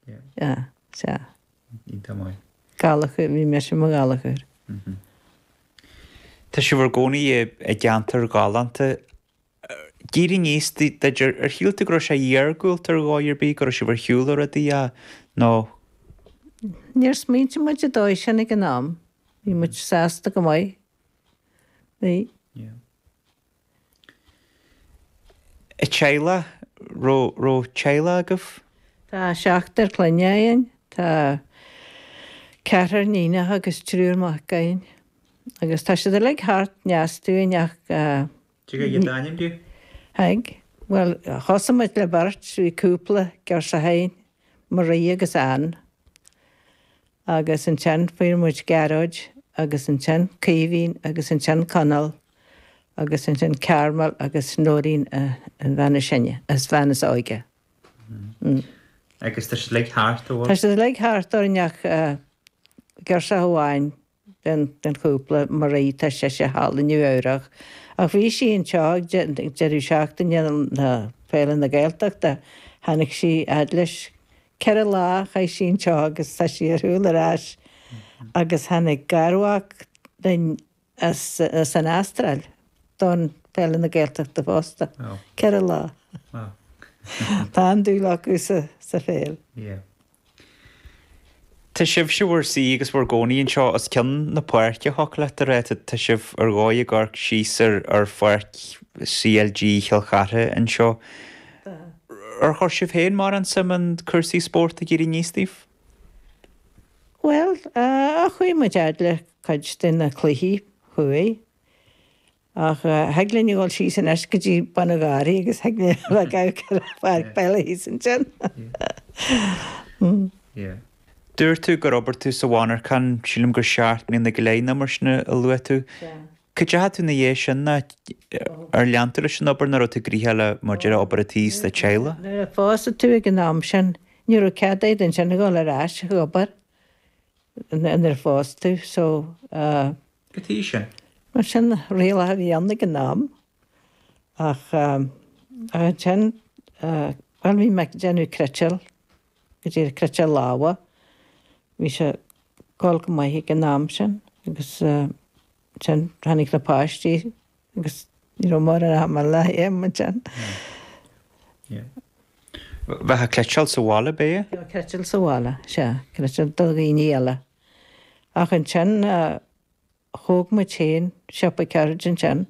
Sea, sea. Ní tamall. Gallagher, bhí mise i mo Gallagher. Tá sibh in bhur gcónaí i gceantar galánta. Ag éirí aníos duit, ar shíl tú go raibh sé iargúlta ar dhóigh ar bith, go raibh sibh ar shiúl ó rudaí, nó. Níor smaointigh muid an dóigh sin ag an am. Bhí muid sásta go maith. Bhí. teaghlach? raibh raibh teaghlach agaibh? Tá seachtar clainne againn, tá ceathrar níonach agus triúr mac againn agus tá siad uilig thart i ndeas dúinn ach eh. Cad é d'ainm di? Haigh, bhuel thosaigh muid le beirt, bhí cúpla girseach againn, Marie agus Anne. Agus ansin fuair muid Gearóid, agus ansin Caoimhín, agus ansin Conall, agus ansin Carmel agus Noeleen, an bhean is sine, an bhean is óige. Agus tá siad uilig thart orainn. Tá siad uilig thart orainn ach girseach amháin den chúpla, Marie, tá sise thall i Nua Eabhrach. Ach bhí sí anseo ag deireadh seachtaine na Féile na Gaeltachta, tháinig sí fhad leis Ceithre lá a chaith sí anseo agus tá sí ar shiúl ar ais agus tháinig garmhac linn as an Astráil don Féile na Gaeltachta fosta. Ceithre lá. Tá an-dúil acu sa pheil. Tá sibhse in bhur suí agus bhur gcónaí anseo os cionn na páirce, thiocfadh leat a rá. Tá sibh ar dhóigh ag amharc síos ar pháirc CLG Chill Chartha anseo. Ar chuir sibh féin mórán suim in cúrsaí spóirt ag éirí aníos daoibh? Bhuel, chuaigh muid fhad le cuid de na cluichí chuaigh. Ach thig linn a dhul síos anois go dtí bun an gharraí agus thig linn a bheith ag amharc ar an pháirc peile thíos ansin. Dúirt tú gur oibir tú sa mhonarchan, sílim gur seacht mbliana go leith nó mar sin a luaigh tú. Cá deachaigh tú ina dhiaidh sin nó ar lean tú leis an obair, nó an raibh tú gnoitheach le maidir le obair an tí is an teaghlaigh? Nuair a phós tú ag an am sin, ní raibh cead a'd ansin a dhul ar ais ag obair nuair a phós tú so. Cad chuige sin? Bhuel, sin riail a bhí ann ag an am, ach ansin, bhuel, bhí mé ag déanamh cniotáil, go díreach cniotáil láimhe, bhí sé ag dul go maith ag an am sin, agus ansin tháinig na páistí agus ní raibh mórán ama le haon ansin. Bheadh cleiteáil sa bhaile, ab ea? Bheadh cleiteáil sa bhaile, sea, cleiteáil do dhaoine eile. Ach ansin thóg muid féin siopa ceird ansin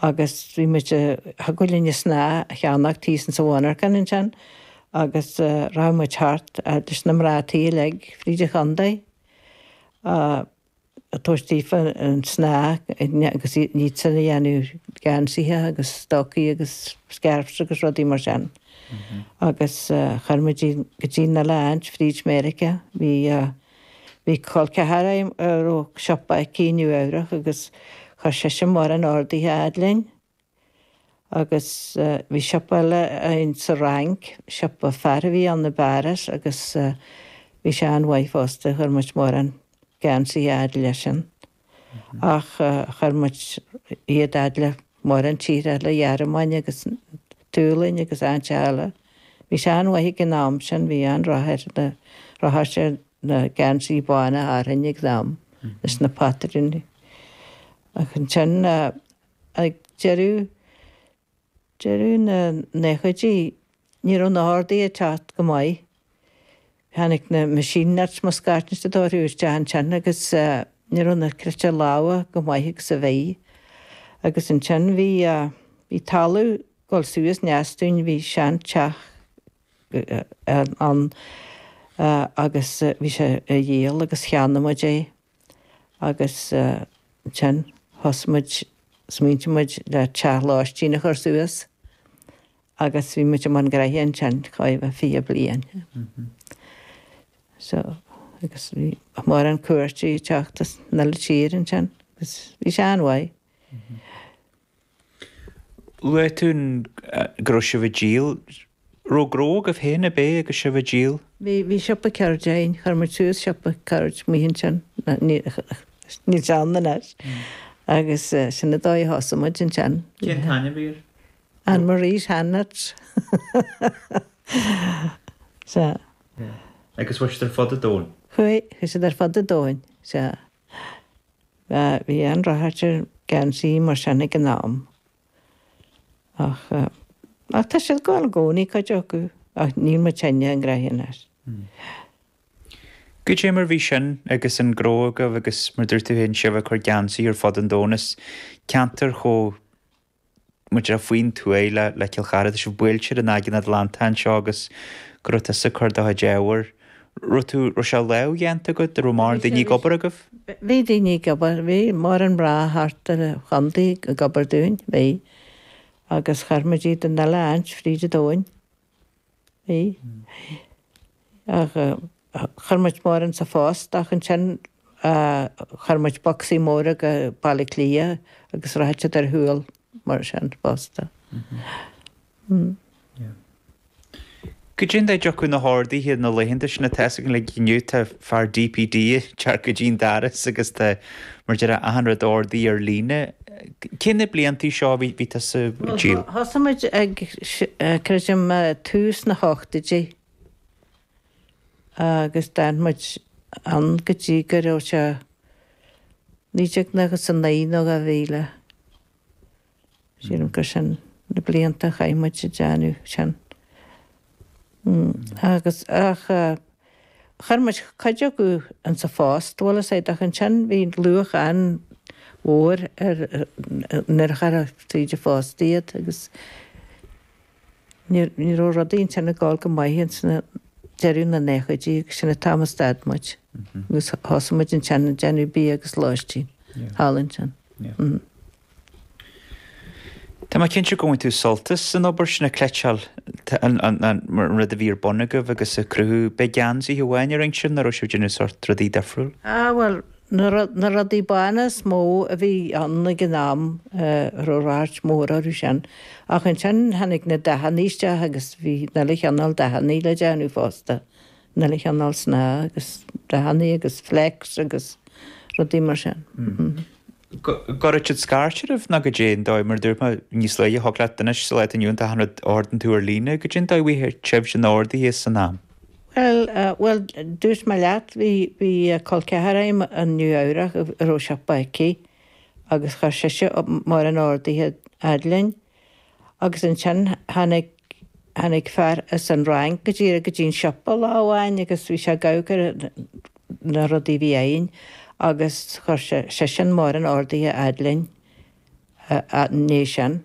agus bhí muid a thug linn an snáth a cheannach tíos insa mhonarcan ansin agus rachadh muid thart leis na mná tí uilig fríd an chontae ag tabhairt daofa an snáth agus iadsan a dhéanamh geansaithe agus stocaí agus scarfs agus rudaí mar sin. agus chuir muid iad go dtí an uile áit fríd Meiriceá. Bhí, bhí col ceathar agam a raibh siopa aici i Nua-Eabhrac agus chuir sise mórán orduithe a fhad linn. Agus bhí siopa eile againn sa Fhrainc, siopa fear a bhí ann i bPáras agus bhí sé an-mhaith fosta, chuir muid mórán geansaithe a fhad leisean. ach chuir muid iad fhad le mórán tíortha eile, an Ghearmáin agus an tSualainn agus áiteacha eile. Bhí sé an-mhaith ag an am sin, bhí an-ráchairt orthu sin, na geansaí bána Árann ag an am leis na patrúin. Ach ansin ag deireadh. deireadh na nóchaidí, ní raibh na horduithe ag teacht go maith. Tháinig na machine knits, Mo Scáth na Dóithre, isteach ansin agus ní raibh an chleiteáil láimhe chomh maith agus a bhí. Agus ansin bhí, bhí talamh ag dul suas i ndeas dúinn, bhí seanteach ann agus bhí sé á dhíol agus cheannaigh muid é. agus ansin thosaigh muid, smaointigh muid le teach lóistín a chur suas agus bhí muid i mbun gnoithe ansin chomh maith, fiche bliain. So, agus bhí mórán cuairteoirí ag teacht as an uile tír ansin, bhí sé an-mhaith. Luaigh tú go raibh sibh ag díol. Raibh gnó agaibh féin ab ea agus sibh ag díol? Bhí, bhí siopa ceird againn, chuir muid suas siopa ceird amuigh ansin, níl sé ann anois, agus sin an dóigh a thosaigh muid ansin. Cén t-ainm a bhí air? Ann Marie's Handknits. Sea. Agus chuaigh siad ar fud an domhain? Chuaigh, chuaigh siad ar fud an domhain, sea. Bhí an-ráchairt ar geansaí mar sin ag an am. Ach, ach tá siad ag gabháil i gcónaí, cuid acu, ach níl muid féin ag brath air. Goidé mar bhí sin agus an gnó agaibh agus, mar dúirt tú féin, sibh ag cur geansaí ar fud an domhain as ceantar chomh. muid ar faoin tuaith le le Cill Chartha, tá sibh buailte ar an Aigéan Atlantach anseo agus go raibh tusa ag cur do chuid ábhair. Raibh tú, raibh sé lámhdhéanta agat? Raibh mórán daoine ag obair agaibh? Bhí daoine ag obair, bhí mórán mná thart ar an chontae ag obair dúinn, bhí, agus chuir muid iad an uile áit fríd an domhain. Chuir muid mórán insa phost ach ansin chuir muid bocsaí móra go Baile Átha Cliath agus rachadh siad ar shiúl mar sin fosta. Go dté mar a thiocfadh na horduithe na laethanta sin tá a fhios againn inniu, tá fear DPD ag teacht go dtí'n doras agus tá, mar deir sé, achan rud a ordaíodh ar líne. Cé na blianta seo a bhí tusa ag díol? Thosaigh muid ag, creidim, tús na hochtoidí agus d'fhan muid ann go dtí go raibh sé 1999 nó 2000. Sílim gur sin na blianta a chaith muid ag déanamh sin. Agus, ach, chuir muid cuid acu ins an phost, bhuel, is é, ach ansin bhí luach an-mhór ar, nuair a chuirfeá tríd an phost iad agus ní, ní raibh rudaí ansin ag dul go maith ins na, deireadh na naochaidí agus sin an t-am a stad muid. Agus thosaigh muid ansin ag déanamh B&B agus lóistín thall ansin. Tá mé cinnte gur bhain tú sult as an obair sin ag cniotáil, an rud a bhí ar bun agaibh agus ag cruthú. An é geansaithe amháin a rinn sibh nó an raibh sibh ag déanamh sort rudaí difriúil? Ah bhuel, na rudaí bána is mó a bhí ann ag an am, bhí ráchairt mhór orthu sin. Ach ansin tháinig na dathannaí isteach agus bhí 'ach uile chineál dathannaí le déanamh fosta. 'Ach uile chineál snáth agus dathannaí agus flecks agus rudaí mar sin. Go raibh siad ag scairtigh oraibh nó goidé an dóigh, mar a dúirt mé níos luaithe, tig leat anois sa lá atá inniu ann achan rud a ordaíonn tú ar líne, goidé an dóigh a bhfuair sibhse na horduithe san am. Bhuel, bhuel, dúirt mé leat, bhí, bhí col ceathar a'm i Nua-Eabhrac a raibh siopa aici agus chuir sise mórán orduithe fhad linn. Agus ansin tháinig, tháinig fear as an Fhrainc go dtí, go dtí an siopa lá amháin agus bhí sé ag amharc ar na rudaí a bhí againn agus chuir sé, seisean, mórán orduithe a fhad linn i ndiaidh sin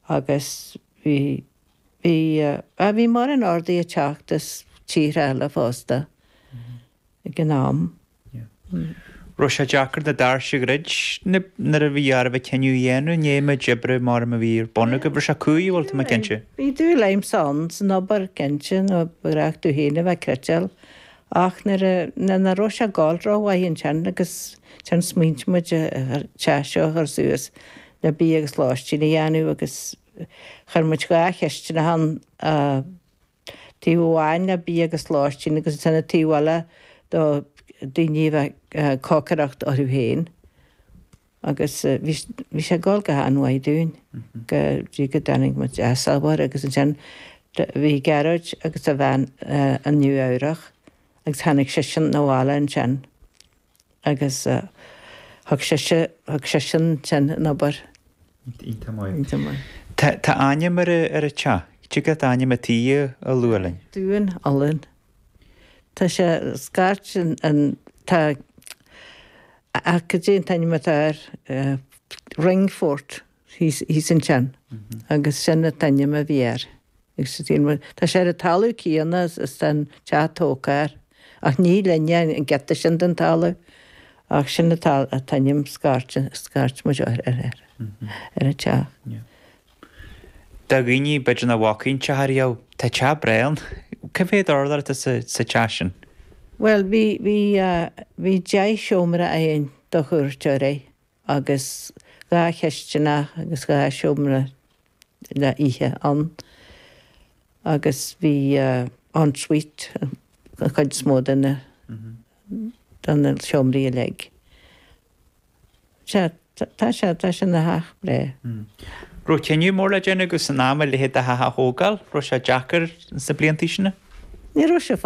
agus bhí, bhí, ah, bhí mórán orduithe ag teacht as tíortha eile fosta ag an am. raibh sé deacair na doirse a dhruid nuair a bhí oraibh cinneadh a dhéanamh, i ndiaidh an méid oibre, abraim, a bhí ar bun agaibh. Bhris sé croí, bhuel tá mé cinnte. Bhí dúil agamsa insan obair cinnte nó bhí tú féin ag cniotáil ach nuair a nuair nach raibh sé ag gabháil rómhaith ansin agus ansin smaointigh muid an teach seo a chur suas le bia agus lóistín a dhéanamh agus chuir muid dhá chistineach ann a Taobh amháin le bia agus lóistín agus ansin an taobh eile do dhaoine a bheith ag cócaireacht orthu féin. Agus bhí, bhí sé ag dul go han-mhaith dúinn go dtí go dtáinig muid as ábhar agus ansin bhí Gearóid agus a bhean i Nua Eabhrach agus tháinig seisean abhaile ansin. Agus thug sise, thug seisean ansin an obair ithim uaidh. Tá ainm ar an teach. Tig leat ainm an tí a lua linn? Dún Ulún. Tá sé, scairt an, tá, cad é an t-ainm atá air? Ringfort. Thíos, thíos an ceann. Agus sin an t-ainm a bhí air. Agus dhein muid, tá sé ar an talamh céanna is tá an teach tógtha air. Ach ní linne an giota sin den talamh. Ach sin an t-ainm scairt, scairt muid ar, ar, ar, ar an teach. Do dhaoine, b'fhéidir nach bhfacaidh an teach riamh, tá teach breá ann. Cé mhéad urlár atá sa, sa teach sin? Bhuel, bhí, bhí, bhí deich seomra againn do chuairteoirí. Agus dhá chistineach agus dhá sheomra le hithe ann. Agus bhí en suite an chuid is mó de na de na seomraí uilig. Sea, tá sé, tá sé ina theach breá. Raibh cinneadh mór le déanamh agaibh san am a leithéid de theach a thógáil. Raibh sé deacair sna blianta sin? Ní raibh sé